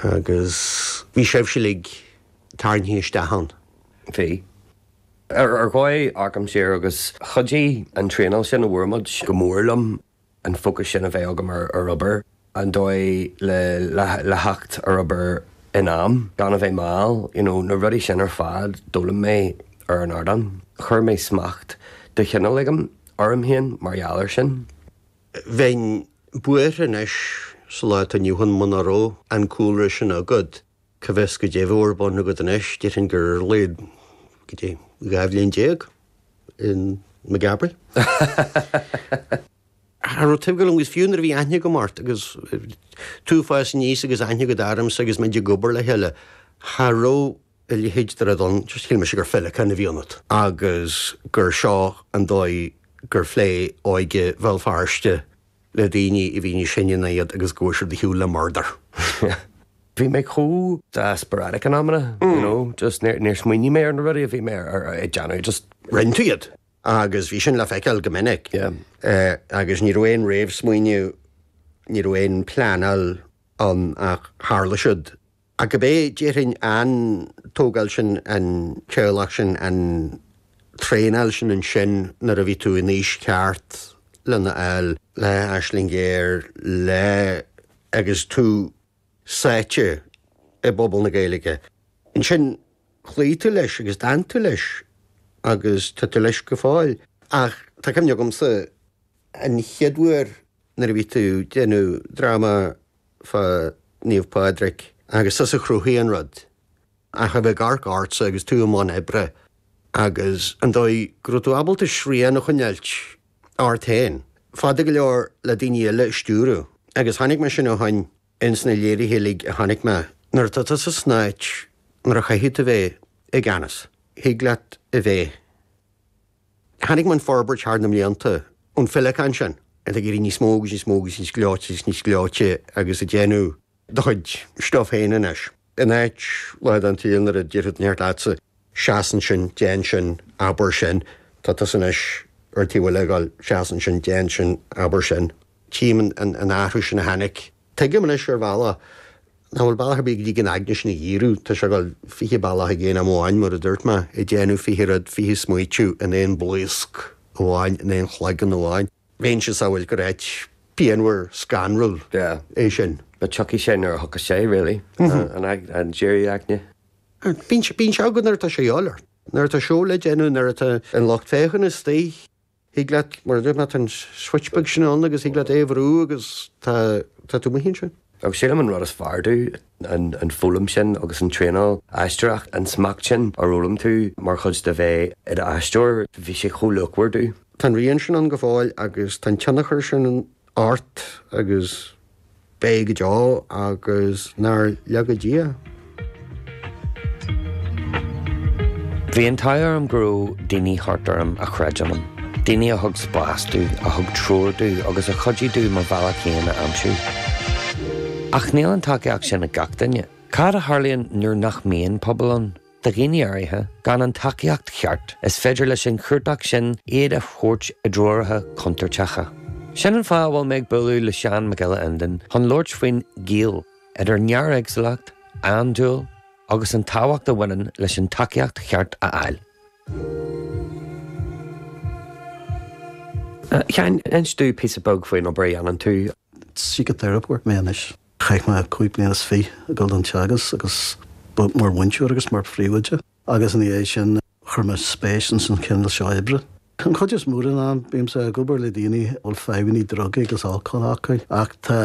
Agus bhí sibhse uilig tarraingthe isteach ann. Bhí. Ar dhóigh amharcaim siar agus chuidigh an traenáil sin a bhfuair muid go mór liom an fócas sin a bheith agam ar obair, an dóigh le theacht ar obair in am gan a bheith mall, you know, na rudaí sin ar fad, d'fhoghlaim mé ar an ardán. Chuir mé smacht de chineál éigin orm féin mar gheall air sin. Bheinn buartha anois sa lá atá inniu ann muna raibh an cúlra sin agat. Cá bhfios goidé bheadh ar bun agat anois, déarfainn gur ar a laghad, goidé, dhá bhliain déag i Maghaberry. Cha raibh taibh go liom agus fiú nuair a bhí aithne agam ort agus tú ag fás aníos agus aithne agat ormsa agus muid ag obair le chéile, cha raibh, a leithéid de rud ann, just shíl mise gur féileacán a bhí ionat agus gur seo an dóigh gur phléigh óige Bhéal Feirste le daoine a bhí níos sine ná iad agus go bhfuair siad ar shiúl le murdar. Bhí mé chomh desperate in amanna, you know, just níor smaoinigh mé ar na rudaí a bhí mé ag déanamh, just. Rinn tú iad agus bhí sin le feiceáil go minic agus ní raibh aon réamhsmaoineamh, ní raibh aon phleanáil ann ach tharla siad. Ach cibé, déarfainn an tógáil sin, an teaghlach sin, an traenáil sin ansin nuair a bhí tú in aois cheart lena fháil, le Aisling Ghéar, le, agus tú sáite i bpobal na Gaeilge, ansin chloígh tú leis agus d'fhan tú leis agus tá tú leis go fóill. Ach tá cuimhne agamsa an chéad uair nuair a bhí tú ag déanamh dráma fá Naomh Pádraig agus tusa a chruthaigh an rud. Ach a bheith ag amharc ortsa agus tú i mbun oibre agus an dóigh go raibh tú ábalta srian a choinneáilt ort féin, fada go leor le daoine eile a stiúradh. Agus chonaic mé sin ó shin ins na léirithe uilig a chonaic mé. Nuair atá tusa san áit nuair a chaithfidh tú bheith i gceannas, thig leat a bheith. Chonaic mé an fhorbairt thar na mblianta ón féileacán sin, ag éirí níos mó agus níos mó agus níos gleoite agus níos gleoite agus ag déanamh do chuid stuif féin anois. In áit lá den tsaol nuair a déarfadh neart leatsa, seas ansin, déan sin, abair sin, tá tusa anois ar an taobh eile ag gabháil, seas ansin, déan sin, abair sin. Tchím an athrú sin a tháinig. Tuigim anois, ar bhealach, nach bhfuil bealach ar bith go dtig an aigne sin a dhíriú. Tá sé ag gabháil fiche bealach ag aon am amháin, mar a dúirt mé, ag déanamh fiche rud, fiche smaoitiú in aon bhlaosc amháin, in aon chloigeann amháin. Bheinnse ag samhailt gur áit pianmhar scanrúil é sin. But tiocfaidh sé nuair a thiocfas sé, really, an díriú aigne. Bíonn sé againn nuair atá sé ag obair, nuair atá seó le déanamh, nuair atá an lucht féachana istigh. Thig leat, mar a deir mé, tá an switch beag sin ann agus thig leat é a bhrú agus tá tú amuigh ansin. Ach sílim an rud is fearr domh, an foghlaim sin agus an traenáil aisteoireachta, an smacht sin ar fhoghlaim tú mar chuid de bheith i d'aisteoir, bhí sé chomh luachmhar domh. Tá an rian sin ann go fóill agus tá an tionchar sin ort agus. Beidh go deo agus nár laga Dia. Bhí an t-ádh orm go raibh daoine thart orm a chreid ionam, daoine a thug spás domh, a thug treoir domh agus a chuidigh domh mo bhealach féin a aimsiú. Ach níl an tacaíocht sin ag gach duine. Cad a tharlaíonn nuair nach mbíonn pobal ann? Do dhaoine áirithe, gan an tacaíocht cheart, is féidir leis an chuardach sin iad a thabhairt i dtreoracha contúirteacha. Sin an fáth a bhfuil mé ag bualadh le Seán Mac Giolla Fhinnéin chun labhairt faoin gaol idir néaréagsúlacht, andúil agus an tábhacht a bhaineann leis an tacaíocht cheart a fháil. Sheáin, inis domh píosa beag faoin obair a dhéanann tú. Síciteiripeoir mé anois. Chaith mé cúig bliana is fiche ag dul don teagasc agus mar mhúinteoir agus mar phríomhoide agus ina dhiaidh sin chuir mé spéis ins an chineál seo oibre. An chuid is mó den am bímse ag obair le daoine a bhfuil fadhbannaí drugaí agus alcóil acu ach tá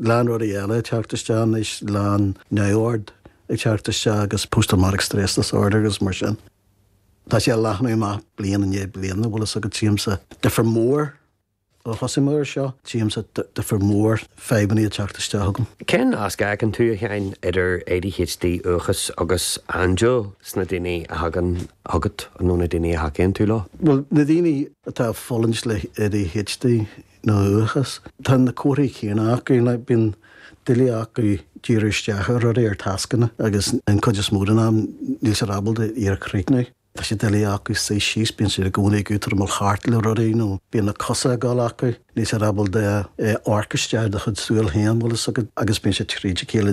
lán rudaí eile ag teacht isteach anois, lán neamhord ag teacht isteach agus post traumatic stress disorder agus mar sin. Tá sé ag leathnú amach bliain i ndiaidh bliana bhfuil fhios agat, tchímse difir mór. Ó thosaigh mé ar seo, tchímse difir mór fadhbannaí ag teacht isteach chugam. Cén nasc a fheiceann tú, a Sheáin, idir ADHD, uathachas agus andúil sna daoine a thagann chugat nó na daoine a thacaíonn tú leo? Bhuel, na daoine atá ag fulaingt le ADHD nó uathachas, tá na comharthaí céanna acu. Bíonn doiligh acu díriú isteach ar rudaí, ar tascanna, agus an cuid is mó den am níl siad ábalta iad a chríochnú. Tá sé doiligh acu suí síos, bíonn siad i gcónaí ag útamáil thart le rudaí nó bíonn na cosa ag gabháil acu, níl siad ábalta amharc isteach i do chuid súil féin, bhfuil fhios agat, agus bíonn siad tríd a chéile.